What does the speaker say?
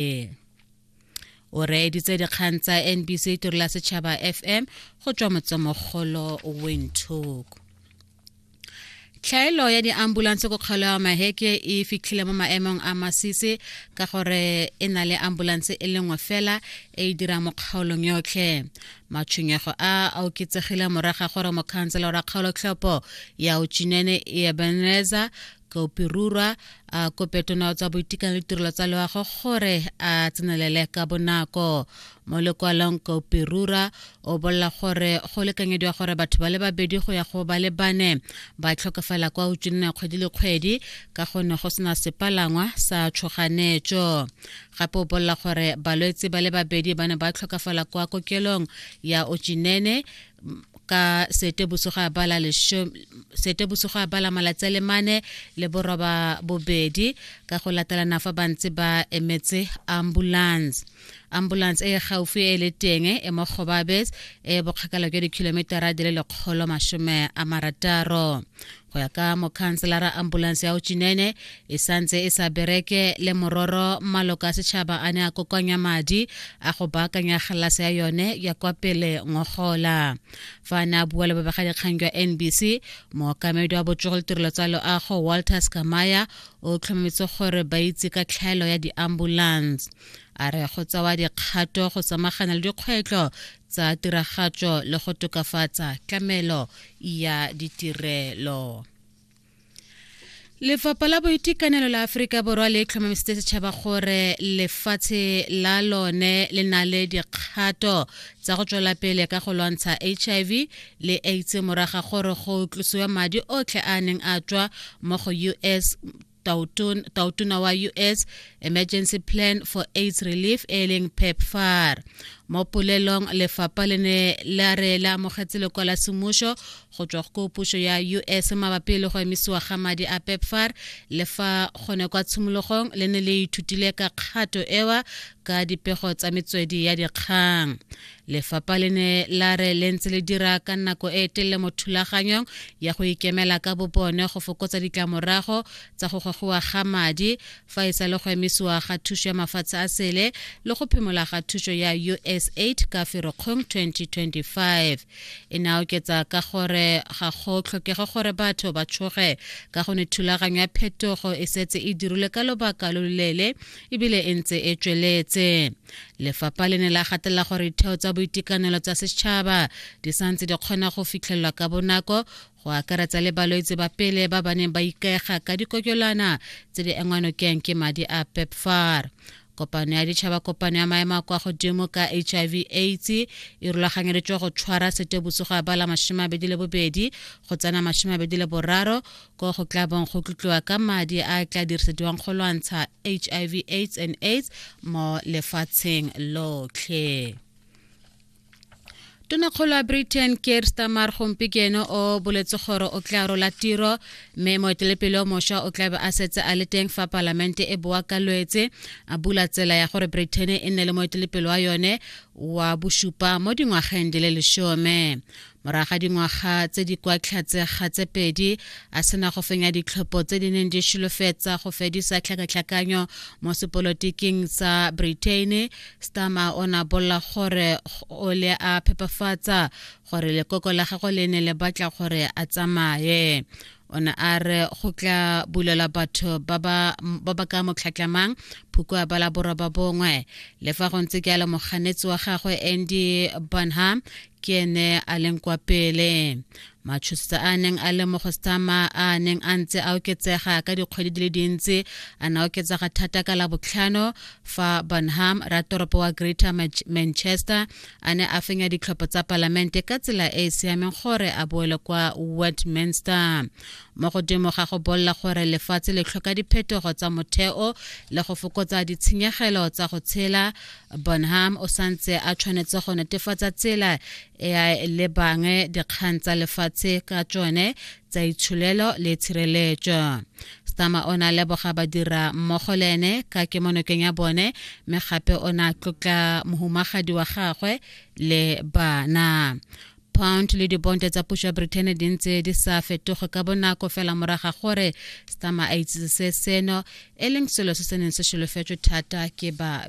ee o reeditse dikgang tsa nbc tiro la setšhaba fm go tswa motsemogolo windhoek tlhaelo ya diambulanse ko kgolo ya maheke e fitlhile mo maemong a masisi ka gore e na le ambulanse e lengwe fela e e dirang mo kgaolong yotlhe matshwenyego a a oketsegile moraga gore mokhantsela wa kgaolotlhopo ya uchinene ebeneza kaopirurwa a kopetona tsa boitekanelo le tirelo tsa loago gore a tsenelele ka bonako mo lekwalong kaopirura o bolela gore go lekanyediwa gore batho ba le babedi go ya go ba le bane ba tlhokafala kwa utswineng ya kgwedi le kgwedi ka gonne go sena sepalangwa sa tshoganetso gape o bolela gore balwetse ba le babedi ba ne ba tlhokafala kwa kokelong ya ochinene ka sete bosigo a bala sete bosigo a bala malatsi a le mane le boroba bobedi ka go latelana fa ba ntse ba emetse ambulance ambulance e gaufi e le teng e mo gobabes e bokgakala jwa dikhilometara di le lekgolo masome a marataro go ya ka mokhanselara ambulanse ya ochinene e santse e sa bereke le mororo maloka a setšhaba a ne a kokoanya madi a go baakanya galase ya yone ya kwa pele ngogola fa a ne a bua le babegadikgang jwa nbc mookamedi wa botsogo le tirelo tsa loago walter scamaya o tlhomametse gore ba itse ka tlhaelo ya diambulance a re go tsewa dikgato go samagana le dikgwetlho tsa tiragatso le go tokafatsa tlamelo ya ditirelo lefapha la boitekanelo la aforika borwa le tlhomamisitse setšhaba gore lefatshe la lone le na le dikgato tsa go tswela pele ka go lwantsha hiv le aids moraga gore go tlosiwa madi otlhe a neng a tswa mo go us taotona wa us emergency plan for aids relief e leng pepfar mo polelong lefapha le ne la re la amogetse lekwa la semmušo go tswa go pušo ya us mabapi le go emisiwa ga madi a pepfar le fa gone kwa tshimologong le ne le ithutile ka kgato ewa ka dipego tsa metswedi ya dikgang lefapha le ne la re le ntse le dira ka nako e e telele mo thulaganyong ya go ikemela ka bobone go fokotsa ditlamorago tsa go gogiwa ga madi fa e sa le go emisiwa ga thuso ya mafatshe a sele le go phimola ga thuso ya usaid ka ferokgong 2025 e ne a oketsa ka gore ga go tlhokege gore batho ba tshoge ka go ne thulaganyo ya phetogo e setse e dirilwe ka lobaka lo loleele ebile e ntse e tsweletse lefapha le ne la gatelela gore ditheo tsa boitekanelo tsa setšhaba di santse di kgona go fitlhelelwa ka bonako go akaretsa le balwetse ba pele ba ba neng ba ikaega ka dikokelwana tse di engwanokeng ke madi a pepfar kopano ya ditšhaba kopano ya maemo a kwa godimo ka hiv aids e rulaganyeditswe go tshwara setebosogo ya bala mashome abedi le bobedi go tsena mashome abedi le boraro ko go tla bong go tlotliwa ka madi a tla dirisediwang go lwantsha hiv aids and aids mo lefatsheng lotlhe tonakgolo ya britain keir stamar gompieno o boletse gore o tla rola tiro mme moetelepele o mošwa o tlabe a setse a le teng fa palamente e boa ka lwetse a bula tsela ya gore britain e nne le moetelepele wa yone wa bosupa mo dingwageng di le lesome Morago ga dingwaga tse di kwa tlhatsega tse pedi a sena go fenya ditlhopho tse di neng di sholofetsa go fedisa tlhakatlhakanyo mo sepolotiking sa Britain, Starmer o ne a bolela gore o le a phepafatsa gore lekoko la gagwe le ne le batla gore a tsamaye. o ne a re go tla bulelwa batho ba ba ka motlhatlamang phukwa ba la borwa ba bongwe le fa go ntse ke a le moganetsi wa gagwe andy bonham ke ene a leng kwa pele matšhosisa a neng a le mo go stama a neng a ntse a oketsega ka dikgwedi di le dintsi a na oketsega thata ka la botlhano fa bonham ratoropo wa greater manchester a ne a fenya ditlhopho tsa palamente ka tsela e e siameng gore a boele kwa westminster mo godimo ga go bolela gore lefatshe le tlhoka diphetogo tsa motheo le go fokotsa ditshenyegelo tsa go tshela bonham o santse a tshwanetse go netefatsa tsela e a lebang dikgang tsa lefatshe ka tsone tsa itsholelo le tshireletso stama o ne a leboga badira mmogo le ene ka kemonokeng ya bone mme gape o ne a tlotla mohumagadi wa gagwe le bana pound le dibonte tsa puso ya britain di ntse di sa fetoge ka bonako fela moraga gore stama a itsise seno e leng selo se se neng se solofetswe thata ke ba